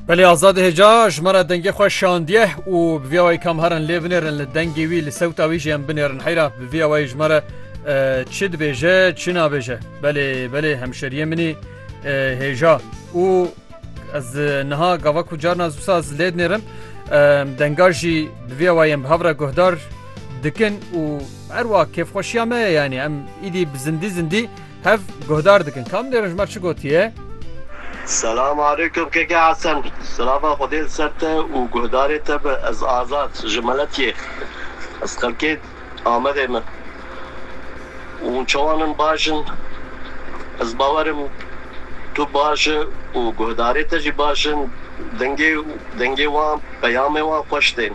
Belê azad hêca ji me re dengê xwe şandiye û bi vîya wayî kam herin lê binêrin li dengê wî li sewta wî jî em binêrin heyra bi vîya wayî ji me re çi dibêje çi nabêje belê belê hemşeriyê minî hêja û ez niha gava ku carna zûsa ez lê dinêrim denga jî bi vîya wayî em bi hevre guhdar dikin û her wa kêfxweşiya me ye yanî em îdî bi zindî zindî Hev guhdar dikin. Kam dê Rijmer çi gotiye? Selam aleykum keke Hesen. Silava Xwedê li ser te û guhdarê te be ez Azad ji Meletiyê ez xelkê Amedê me. Hûn çawan in baş in ez bawer im tu baş e û guhdarê te jî baş in dengê dengê wan peyamê wan xweş tên.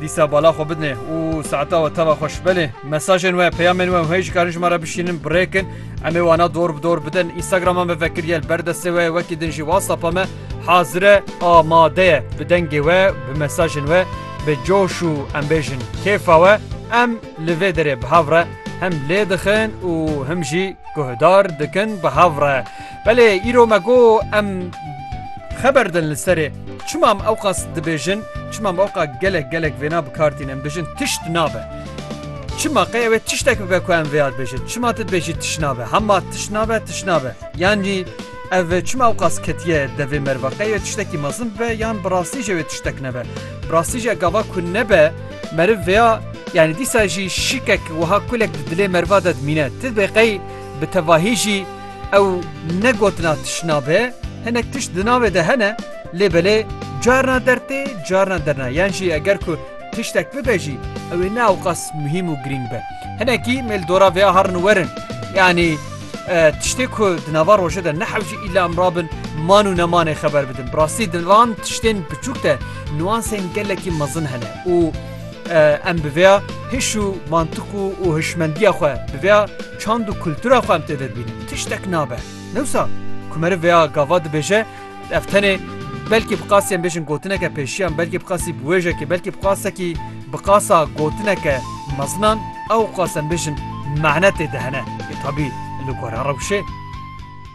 Dîsa bala xwe bidinê û saeta we teva xwe şibelê. Mesajên we, peyamên we û heyî jikarin ji me re bişînin bi rê kin. Em ê wana dor bi dor bidin. Instagrama me vekir ye li ber destê we ye wekî din jî Whatsapp-a me hazir e, amade ye. Bi dengê we, bi mesajên we, bi coş û em bêjin kêfa we em li vê derê bi hev re hem lê dixin û him jî guhdar dikin bi hev re. Belê îro me got em xeber din li serê çima em ewqas dibêjin, çima em ewqa gelek gelek vêna bi kar tînin, em dibêjin tişt nabe. Çima qey ew ê tiştek bibe ku em vêya dibêjin? Çima tu dibêjî tişt nabe? Hema tişt nabe, tişt nabe. Yanî ev çima ewqas ketiye devê meriva? Qey wê tiştekî mezin bibe yan bi rastî jî wê tiştek nebe? Bi rastî jî gava ku nebe meriv vêya yanî dîsa jî şikek wiha kulek di dilê meriva de dimîne. Ti dibê qey bi tevahî jî Ew ne gotina tişna be, hinek tişt di navê de hene, lê belê carna dertê, carna derna. Yan jî eger ku tiştek bibe jî, ew ê ne ewqas muhîm û girîng be. Hinekî mêl dora vêya herin werin. Yanî tiştê ku di nava rojê de nehewcî îla em rabin man û nemanê xeber bidin. Bi rastî di van tiştên biçûk de nuansên gelekî mezin hene û Em bi vêya hiş û mantiq û û hişmendiya xwe, bi vêya çand û kultura xwe em têde dibînin. Tiştek nabe. Newsa ku meriv vêya gava dibêje, ev tenê belkî bi qasî em bêjin gotineke pêşiyan, belkî bi qasî biwêjekê, belkî bi qasekî bi qasa gotineke mezinan ew qas em bêjin mane têde hene. Tabî li gora rewşê.